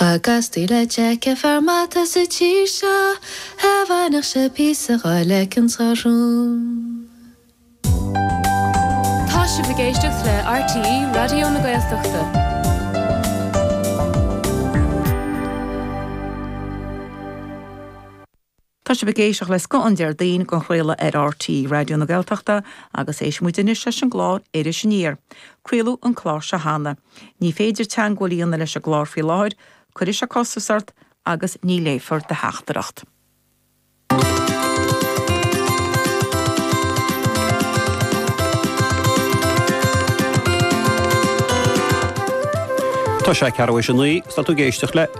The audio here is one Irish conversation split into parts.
Cha gcastaí le Jack fear maith sa tír seo a bhainfeadh sé píosa dhá leiceann sa rún. Tá sibh ag éisteacht le RTÉ Raidió na Gaeltachta. Tá sibh ag éisteacht le scoth an Déardaoin á chraoladh ar RTÉ Raidió na Gaeltachta agus éistfidh muid anois leis an gclár Iris Aniar. Craoladh an clár seo cheana. Ní féidir teagmháil a dhéanamh leis an gclár faoi láthair, cuirfidh sé costas ort agus ní léifear do theachtaireacht. Tá sé ceathrú tar éis a naoi, 's tá tú ag éisteacht le.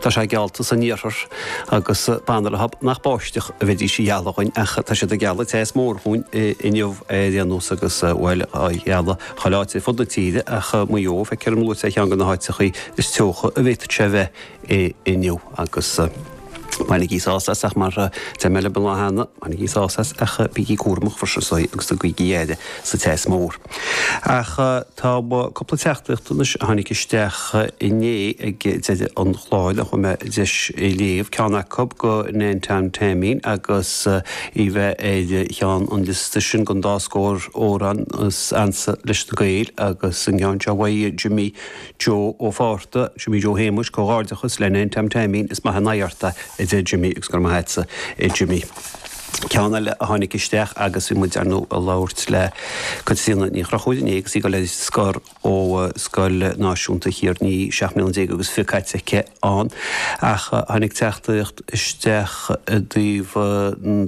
Tá sé geallta san iarthar agus b'fhada an lá nach báisteach a bheidís a ghealladh dhúinn ach tá siad ag gealladh teas mór dhúinn inniu ar aon nós agus, bhuel, gealladh chuile áit ar fud na tíre ach Maigh Eo, feictear dom go bhfuil sé ar cheann de na háiteachaí is teocha a d'fhéadfadh sé a bheith inniu agus bainigí sás as ach mar a deir mé babhta cheana, bainigí sás as ach bígí cúramach, for sure, agus tugaigí aire sa teas mór. Ach. Tá cúpla teachtaíocht anois a tháinig isteach inné ag deireadh an chláir nach bhfuair mé deis a léamh, ceann acu go Nan Tom Teaimín agus í bheith ar cheann an liosta sin den dá scór amhrán is ansa leis na Gaeil agus an ceann seo uaidh Jimmy Joe Ó Fátharta, Jimmy Joe Shéamuis, Comhghairdeachas le Nan Tom Teaimín, is maith an aghaidh ort é a deir Jimmy agus go raibh maith agatsa a Jimmy. Ceann eile a tháinig isteach agus bhí muid ar ndóigh ag labhairt le Caitríona Ní Chonchúir inné agus í ag dul ar scor ó Scoil Náisiúnta Thír an Fhia, seacht mbliana déag agus fiche caite aici ann. Ach tháinig teachtaíocht isteach i dtaobh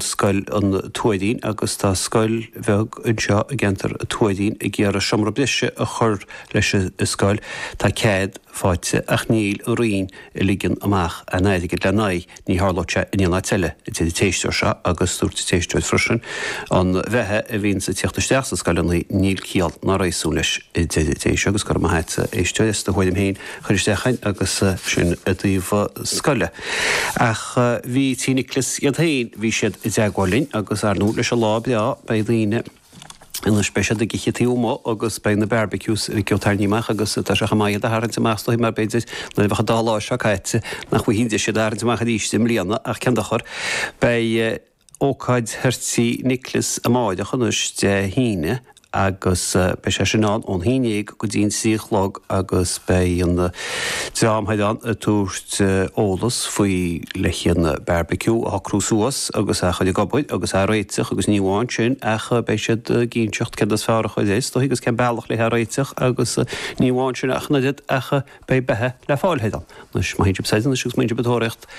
Scoil an Tuairín agus tá scoil bheag anseo i gceantar an Tuairín ag iarraidh seomra breise a chur leis an scoil. Tá cead faighte ach níl an Roinn ag ligean amach an airgid le n-aghaidh Ní tharlódh sé in aon áit eile, a deir an t-éisteoir seo agus dúirt an t-éisteoir freisin, An bheatha a bhíonns ag tíocht isteach sna scoileanna, níl ciall ná réasún leis. a deir an t-éisteoir agus go raibh maith agat, a éisteoir, as do thuairim féin a chur isteach ann agus sin i dtaobh scoile. Ach bhí Tigh Niocláis iad féin, bhí siad i dteagmháil linn agus, ar ndóigh, leis an lá breá, beidh daoine. Anois beidh siad ag ithe taobh amuigh agus beidh na barbecues dhá dtarraingt amach agus tá sé chomh maith iad a tharraingt amach is dóigh mar b'fhéidir nuair a bheas an dá lá seo caite nach bhfaighfear aon deis iad a tharraingt amach arís i mbliana ach cén dochar, beidh ócáid thoir Tigh Niocláis amáireach, anois Dé hAoine agus beidh sé sin ann ón haon dhéag go dtí an trí a chlog agus beidh an dream thoir ann ag tabhairt eolas faoi leithéidí an barbeque a shocrú suas agus a chur ag obair agus a réiteach agus ní amháin sin ach beidh siad ag inseacht céard is fearr a chur air, stócaí agus cén bealach le é a réiteach agus ní amháin sin ach an oiread ach beidh beatha le fáil thoir ann. Anois, má théann sibh soir anois agus má théann sibh ag tóraíocht.